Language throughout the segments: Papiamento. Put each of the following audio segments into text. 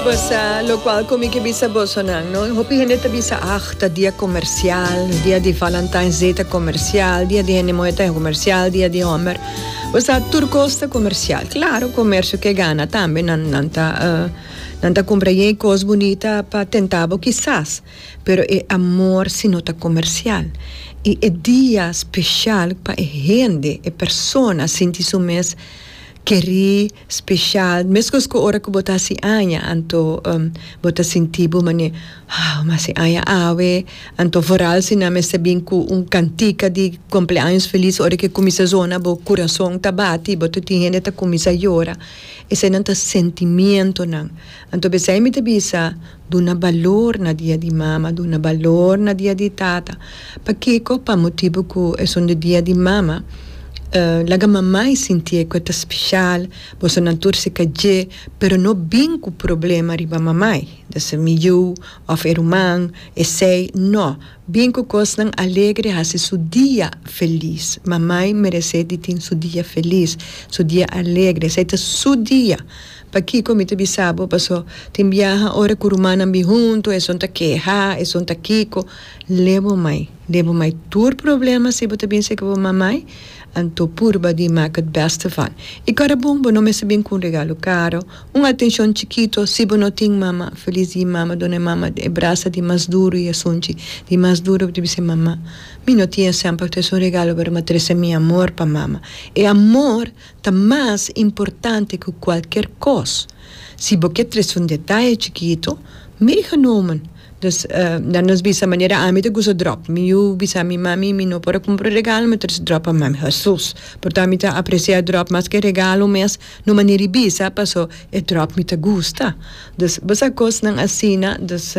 Basa lokual ku mi ke bisa boso nan no. Hopi hende ta bisa ah ta dia komersial, dia di Valentine's Day ta komersial, dia di hende muhé ta komersial, dia di hòmber. Basa tur kos ta komersial. Klaro komersio ke gana tambe nan nan ta nan ta kumpra yei kos bunita pa tentá bo kisas pero e amor si no ta komersial i e dia speshal pa e hende e persona sinti su mes kerí. Special, mescos cu ora cu bo ta haci aña, anto bo ta sinti bo manera, Wow, mi haci aña awe! Anto vooral si nan mester bin cu un cantica di cumpleaños feliz, ora que cuminsa zona bo curazon ta bati, bo ta tin hende ta cuminsa yora. Eseynan ta sentimientonan. Anto p'esey mi ta bisa. Duna balor na dia di mama, duna balor na dia di tata. Pakico? Pa motibu cu esonde dia di mama e laga mamai sintie cu e ta special, boso nan tur sika dje, pero no bin cu problema riba mamai, dese mi yu of e ruman, esey, no, bin cu cosnan alegre, haci su dia feliz. Mamai merece di tin su dia feliz, su dia alegre, esey ta su dia. Pakiko mi ta bisa bo? Paso tin biaha ora ku rumannan bin huntu, esun ta keha, esun ta kiko. Le bo mai, le bo mai tur problema si bo ta bin seki bo mamai, anto purba di mak het beste van. I kora bon, bo no mester bin ku un regalo karo, un atenshon chikito, si bo no tin mama, felis di e mama, duna e mama e brasa di mas duru i esunchi di mas duru bo ta bisa, Mama, mi no tin esèn pa ta esun regalo, pero mi a trese mi amor pa mama. E amor Ta mas importante cu cualkier cos. Si bo ke trece un detaye chikito, meegenomen. Dus, na nos bisa manera ami ta gusta drop. Mi yu bisa mi mami, mi no por a cumpra un regalo, mi trece drop pa mami. Hesus! Porta ami ta aprecia drop mas ke regalo mes, na un manera di bisa, paso e drop mi ta gusta. Dus, bo sa cosnan asina, dus,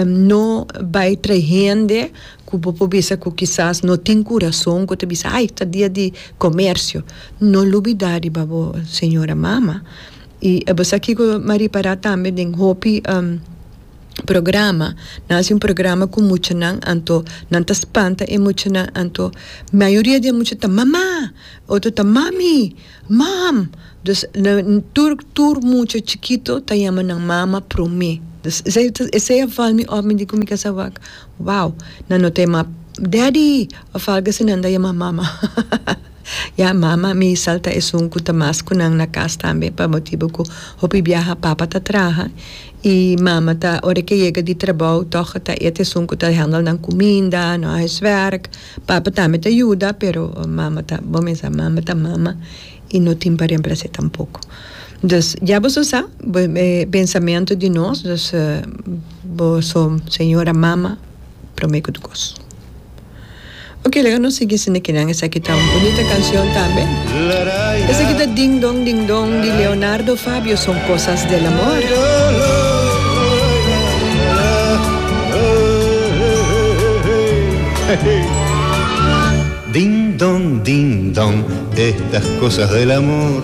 no bay trae hende. Ku bo por bisa ku kisas no tin kurason ku ta bisa ai ta dia di komersio. No lubidá riba bo señora mama. I e bo sa kiko mi a ripará tambe den hopi programa nan hasi un programa ku muchanan anto nan ta spanta e muchanan anto mayoria di e mucha ta mama otro ta mami mom dus tur tur mucha chikito ta yama nan mama prome. Esei esei a val mi op mi di ku mi kasa wak. Wow, nan no tema Daddy of algo así nan ta yama mama. Ya mama mi salta esun cu ta mas cu nan na cas tambe pa motibo cu hopi biaha papa ta traha y mama ta ora ke yega di trabou tog a ta et esun cu ta handel nan cuminda, nan huiswerk. Papa tambe ta yuda pero mama ta, bo mes sa mama ta mama y no tin pa reemplac'e tampoco. Dus ya boso sa, bo e pensamento di nos, dus. Bo so señora mama prome cu tukos. Ok laga nos sigui sende kinan esaki ta un bunita cancion tambe esaki ta ding dong ding dong di Leonardo Fabio son cosas del amor. Ding dong ding dong estas cosas del amor.